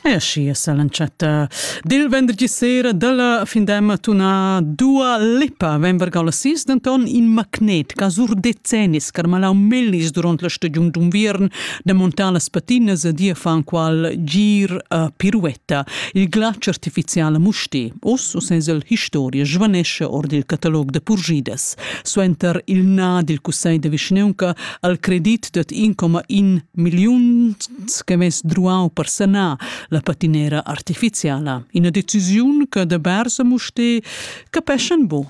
E schi es l'entschatta dil vendergi sera dalla findemma tuna dua leppa ven vargau la sis denton in magnet che sur decennis carmalau mellis durant la stagiun d'unviern da montar las patinas e dir fan qual gir a piruetta il glatsch artificial a Musti us us es il historia svanesce ord il catalog da purgidas suenter il na dil cussegl da vischneunca al credit dad 1,1 milliun che vess druau per sanar la patinera artificiala. Ina decisiun che de Bersa muste capeschan bu,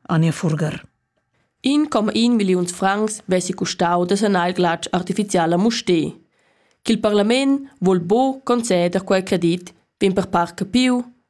Anja Furger. 1,1 milliun francs vessi custau da sanar il glatsch artificiala muste. Ch'il parlament vol bo conceder quei credit, vegn per part capiu,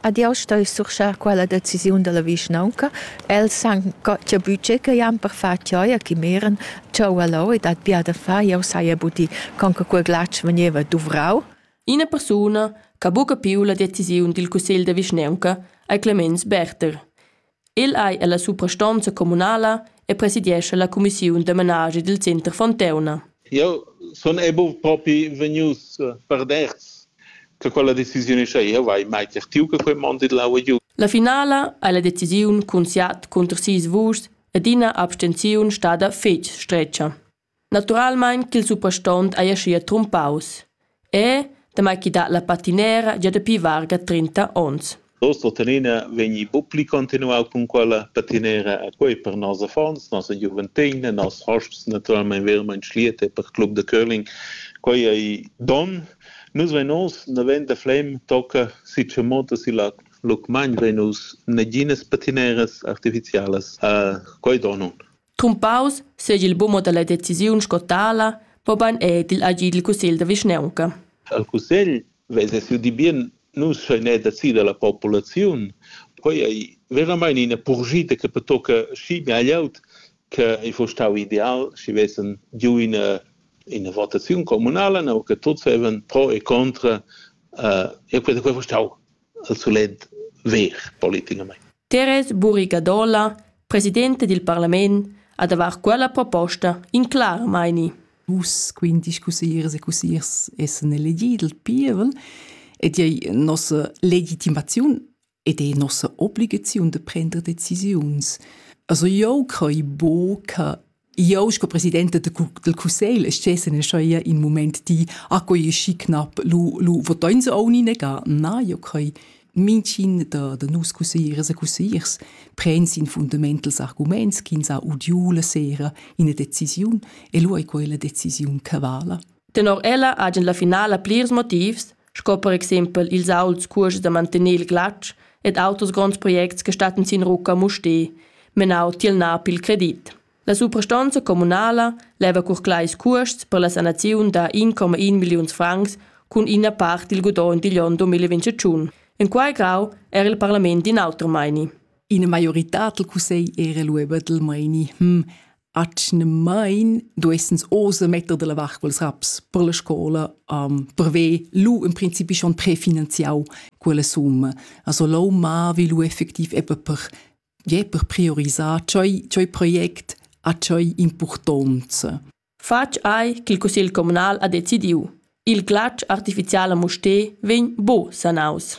Ad jau stoi surschar quella decisiun da la vischnaunca. Els san co che budget che han per far chioia chi meran cheu a lò e dat bia da far. Jau saja buti con che quel glatsch vegneva duvrau. Ina persuna ch'ha buca piu la decisiun dil cussegl da vischnaunca ei Clemens Berther. El ei ella suprastonza communala e presidiescha la cumissiun da menaschi dil Center Fonteuna. Jeu sun ei buc propi vegnius perderts che quella decisiun ei schai. Jeu vai mai certiu che quei mondi dalla giu. La finala ei la decisiun cun siat cunter sis vuschs ed ina abstenziun stada fetg stretga. Naturalmein ch'il suprastont ei aschia trumpaus. E, damai ch'i dat la patinera gia dapi varga trinta onns. Nos tuttenina vegni buc pli continuau cun quella patinera e quei per nos affons, nossa giuventegna, nos hosps naturalmein veramein schliet e per club de curling. Quei ei donn. Nus vein oz naven da Flem tocca si Tschemotta si Lac. Lucmagn vein oz naginas patineras artificialas. quei donn. Tumpaus seigi il bumo dalla decisiun sco tala, mobein ed igl agid dil cussegl da vischnaunca. Al cussegl vesa siu di bien nus schein er decida la populaziun. Quei ei veramain ina purgita che pertocca schi meglieut che ei fo stau ideal, schi vessen giu ina ina votaziun communala, no che tuts vevan pro e contra. Uh, e quei quei fo stau al sulet ver politicamente. Teres Buri Gadola, presidente dil parlament, ha davar quella proposta in clar meini. Us quinti scusirs e cusirs essen elegi dal pievel ed ei nossa legitimaziun ed ei nossa obligaziun de prender decisiuns. Also eu crei bo che Io sco presidenta del cussegl stessen schia in moment di acoi schi knap lu lu votain so oni nega na io coi mincin da, da nus cussiers e cussiers prens in fundamentals arguments ch'ins ha udiu la sera ina decisiun e lu ei quella decisiun cavala. Tenor ella hagen la finala plirs motivs sco per exempel ils auts cuors da mantener il glatsch ed auters gronds projects che stattan sin rucca a Mustér, menau tiel NAP il credit. La suprastonza communala leva cur clais cuosts per la sanaziun da 1,1 milliuns francs cun ina part dil gudogn digl onn 2021. En quai grau era il parlament in auter meini. Ina maiorità dal cussegl era lueba dal meini. Hm. atgnamain duessens ose metter de la vart quels raps per la scola um, per ve lu in principi schon prefinanziau quella summe also lo ma vi lu effektiv eben per je per priorisar cioi cioi project a cioi importanza Fatg ei ch'il cussegl communal ha decidiu. Il glatsch artificial a Musté vegn bo sanaus.